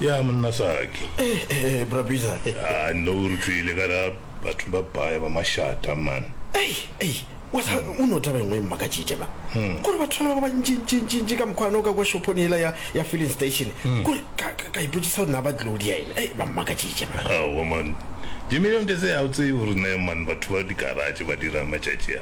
ya monna saki eh, eh, eh, brabisa a ah, no re tswile ka ra batho ba baya ba mashata man wasa o ne o taba engwe e mmakatšitše ba hmm. kore batho ba ba bantšintšintšintši ka mokgwane o ka kwa shophone ela ya filling station hmm. kore ka ipotsisa gore na ba tlilo di ene e ba mmakatšitše ba man dimilion tse se a o tsee gore ne man batho ba dikaratše ba dira matšatši a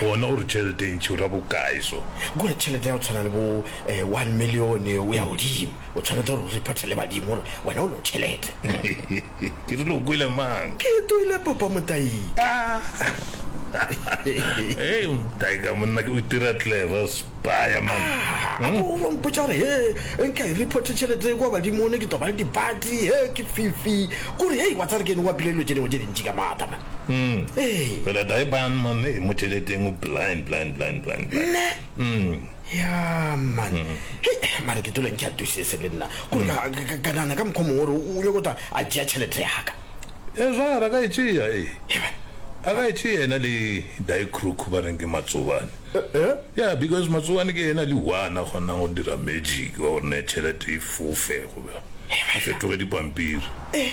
Gona o re tšhelete e ntši o ra bokae so? Kua tšhelete ya go tshwana le bo one million o ya godimo. O tshwanetse gore o repotele badimo gore wena o lo tšhelete. Ke rile o kwele mang? Ke toile papa Motayi. Hei Motayi ka monna ke o itira clever spaya man. A ko o lo mpotša gore he nka e reporte tšhelete kua badimone ke tlo ba le dipati he ke fifi. Ko re hei wa tsare ke ene o apile dilo tše dingwe tše dintši ka maata man. Umm ee. Fela tae ban man ee motšheleteng o blind blind blind blind blind. Nna? Umm. Ya man. Hei mare ke tolo ntšha tusese le nna. Kore ka ka ka nana ka mokho mongwe o nyoko ta a tšea tšhelete ya ka. E zwa ra ka e tšea ee. Hei man. A ka e tšea yena le dae crook ba reng ke matsobane. Eh eh. Ya because matsobane ke yena le one a kgonang go dira magic wa gore ne tšhelete e fofe go be. Hei man. Fetoge dipampiri. Eh.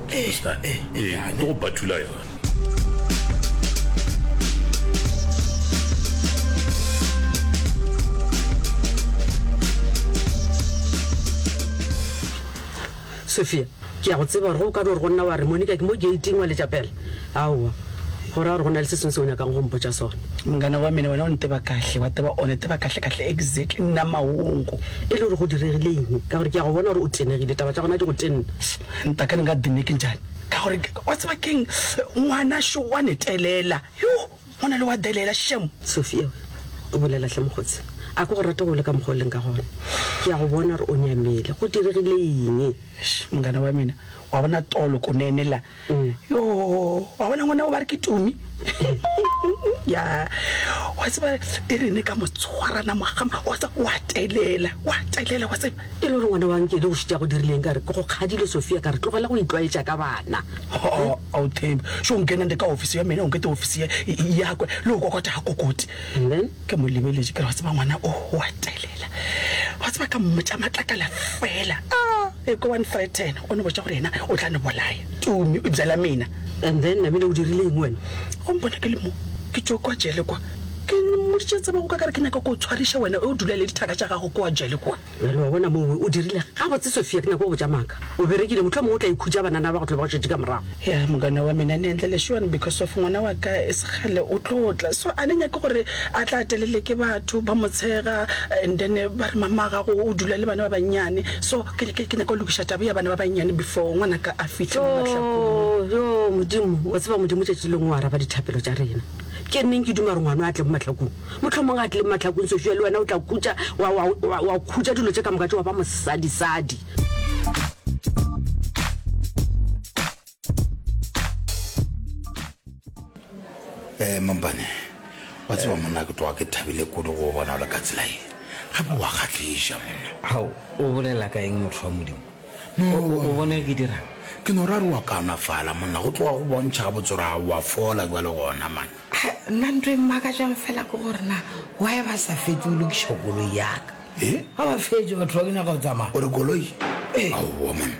Pastor, eh, eh, Ee, bjale. ke go batula yona sophia ke ya go tseba gore ge o ka be gore go nna wa re monica ke mo gating wa letša pela aowa go raya gore go na le se sengwe se o nyakang go mpotša sone mngana wa mene wena o nteba kahle wa teba one teba kahle kahle exactly nna maongo e le gore go diregileng ka gore ke ya go bona gore o tenegile taba tša gona di go tenna Nta ka nka dinne ke njani ka gore wa tseba keng ngwana šo wa netelela yo ngwana le wa delela shem. Sophia o bolela hle mokgotsi a ke go rate go le ka mokgwa o leng ka gona ke ya go bona gore o nyamele go diregile eng. Mngana wa mina wa bona tolo ko nenela yo wa bona ngwana o ba re ke tumi. ya wa tseba e rene ka motshwarana mogama wa tsa wa telela wa telela wa tseba e le gore ngwana wa nkele o šitša go dirileng ka re ke go kgadile sofia ka re tlogela go itlwaetša ka bana ao thembe so nkenang le ka office ya mene o nkete office ya yakwe le o kokota ga kokoti ke mo lebeletse ke re wa tseba ngwana o wa telela wa tseba ka mmotša matlakala fela e ko one threaten o ne botša gore yena o tla ne bolaya tumi o jala mena And then Namile o dirile eng wena? Wa mpona ke le mo, ke tšo kwa jele kwa. Ke mmoditše tsebe go ka ka re ke nyaka ko o tshwariša wena ew dula le dithaka tša gago kwa jele kwa. Bjale wa bona mo we o dirile gabotse Sophia ke nyaka go botša maaka. O berekile mohlomong o tla ikhutša banana ba go tlo ba go šetše ka morago. Yeah mogwera wa mina ne endla lešuan because of ngwana wa ka e se kgale o tlo tla so a ne nyake gore a tla telele ke batho ba mo tshega and then ba re mama gago o dula le bana ba bannyane So ke ke ke nyaka go lokiša taba ya bana ba bannyane before ngwanaka a fihle mo mahlakong. Yo, yo, Modimo, wa tseba Modimo tšatši lengwe o araba dithapelo tša rena. Ke neng ke duma gore ngwana a tle mo mahlakong? Mohlomong a tle mo mahlakong sešo ya le wena o tla kutša, wa, wa, wa, wa khutša dilo tše ka moka tše wa ba mosadisadi. Eh, mampane wa tseba monna ke tloga ke thabile kudu go bona o le ka tsela e gape wa kgatlhiša monna gao o bolela ka eng motho wa modimo o bona ke dira ke no ra re wa kaonafala monna go tloga go bontšha ga botsora gago wa fola jwa le gona mana nna ntho e mmaka jang fela ke gore na wa e ba sa fetse o lokiša koloi yaka ga ba fetse batho ba ke nyaka go tsamaya ore koloi aowa monna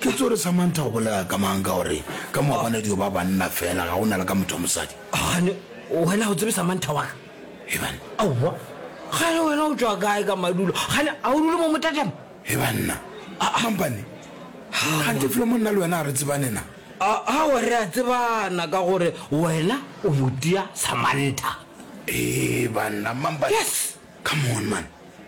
Ke tsore Samantha o bolela ka mang ka gore ka mo bona dio ba banna fela ga ona le ka motho wa mosadi. Gane wena o tsebe Samantha wa ka. He banna. Aowa. Gane wena o tswa kae ka madulo? Gane a o dule mo motatema? He banna. A mampane. Ha ke flo monna le wena a re tsebane na. A a wa re a tsebana ka gore wena o motia Samantha. He banna mampane. Yes. Come on man.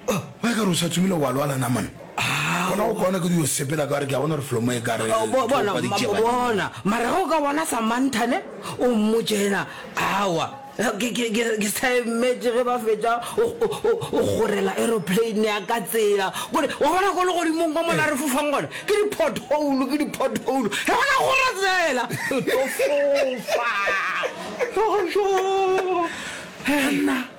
Oh, ba ka re o sa tsomile wa lwala na man. Ah, bona o bona ke di o sepela ka re ke a bona re flomo e ka re. Oh, bo bona, bona. Mara go ka bona Samantha ne o mmotšena awa. Ke ke ke ke sa emetse ge ba fetša o gorela aeroplane ya ka tsela. Gore wa bona go le godimong kwa mona re fofang gona. Ke di pothole, ke di pothole. Re bona gore tsela. Ke fofa. Go go. Hey.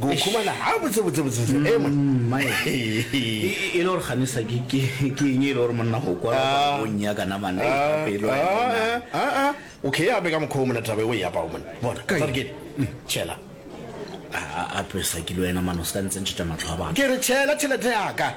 go khumana ha botse botse botse botse e mona mm, e le gore gane sa ke ke ke eng e le gore monna go kwa go nya kana mana e ka pelo e mona a a okay ya be ka mokho mona taba e ya pa o mona bona ka tsare ke mm, chela a a pesa ke lo ena mano ska ntse ntshita matlho a ba ke re chela chela te ya ka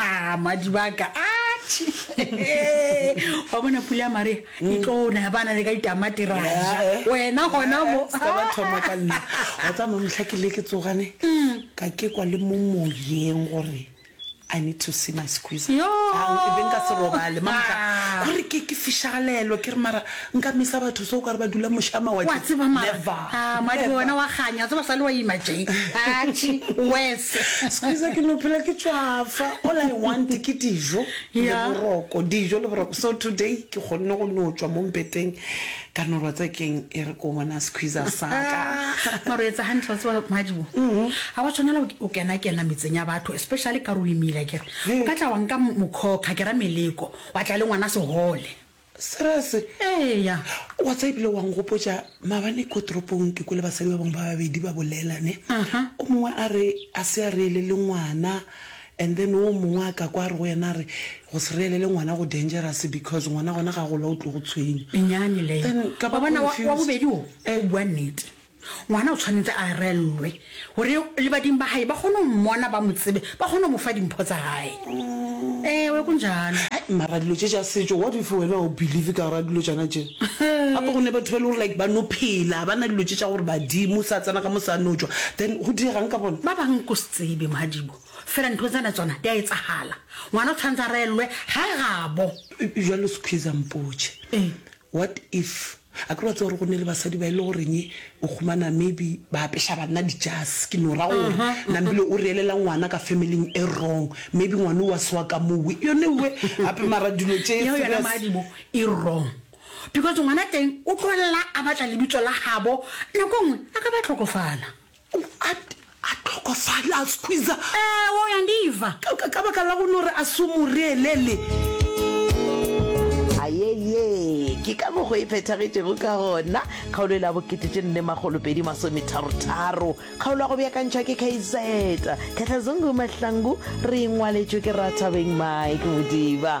Ah, madibaka atšhi wa bona pula ya maria e tlona ya bana le ka ditamati ra ja Eh, wena gona mo Se ka ba thoma ka nna wa tsa mamotlha ke le ke tsogane ka ke kwa le mo moyeng gore I need to see my squeezer Yoh! Ke be nka se robale mama tla go re ke ke fishagalelo ke re mara nka misa batho so o ka re ba dula moša Wa mawatle tseba mara never ah, madi never wena wa kganya, wa tseba sale wa ima tše. Atšhe, worse. squeezer ke no phela ke tšwafa all I want ke dijo le Yeah. boroko dijo le boroko so today ke kgonne go no tšwa mo mpeteng Ka no rwatsa keng e re ko bona squeezer sa ka. Mara o etsa hantle wa tseba Madibo ha wa tshwanela o kena kena metseng ya batho especially ka re o imile akere o ka tla wa nka mokhokha ke ra meleko wa tla le ngwana sehole. Serious? Eya. Wa tseba ebile wa ngopotša mabane ko toropong ke kwele basadi ba bangwe ba babedi ba bolela ne o mongwe a re a se a reele le ngwana And then wo mongwe a ka kwa a re go yena a re go se reelele ngwana go dangerous because ngwana gona ga gola o tlo go tshwenya. Menyane leyo. Then ka ba Wa bona wa wa confused. bobedi wo Eh. o bua nnete. Ngwana o tshwanetse a reellwe gore le badimo ba hae ba kgone go mmona ba mo tsebe ba kgone go mo fa dimpho tsa hae. Ewe go njalo. Hai, mara dilo tše tša setšo what if wena ga o believe ka gora dilo tšana tše gape go ne batho ba e le gore like ba no phela ba na dilo tše tša gore badimo sa tsena ka mo sa no tšwa then go diegang ka bona Ba bang ko se tsebe Madibo Fela ntho tsena tsona di a etsagala. Ngwana o tshwanetse a reellwe gae gabo. Bjalo Squeezer mpotše. Eng? What if a kere wa tseba gore go ne le basadi ba e le goreng o humana maybe ba apeša banna dijase ke no ra gore nambile o reelela ngwana ka family-ing e wrong maybe ngwana o wa sewa ka moo we yone we gape mara dilo tše Yeo yona serious moadimo e wrong because ngwana teng o tlogelela a batla lebitso la gabo nako nngwe a ka ba tlhokofala. O a, a hlokofale, a squeezer. Ewo, o ya ndiva. Ka, ka, ka baka la go no re a se mo reelele. A ye, ye ke ka mokgo e phethagetšego ka gona. Kgaolo e la bokete tše nne makgolo pedi masometharo tharo. Kgaolo ya go beakantšhwa ke KZ. Khetlazungu Mahlangu, re e ngwaletšwe ke Rathabeng Mike Modiba.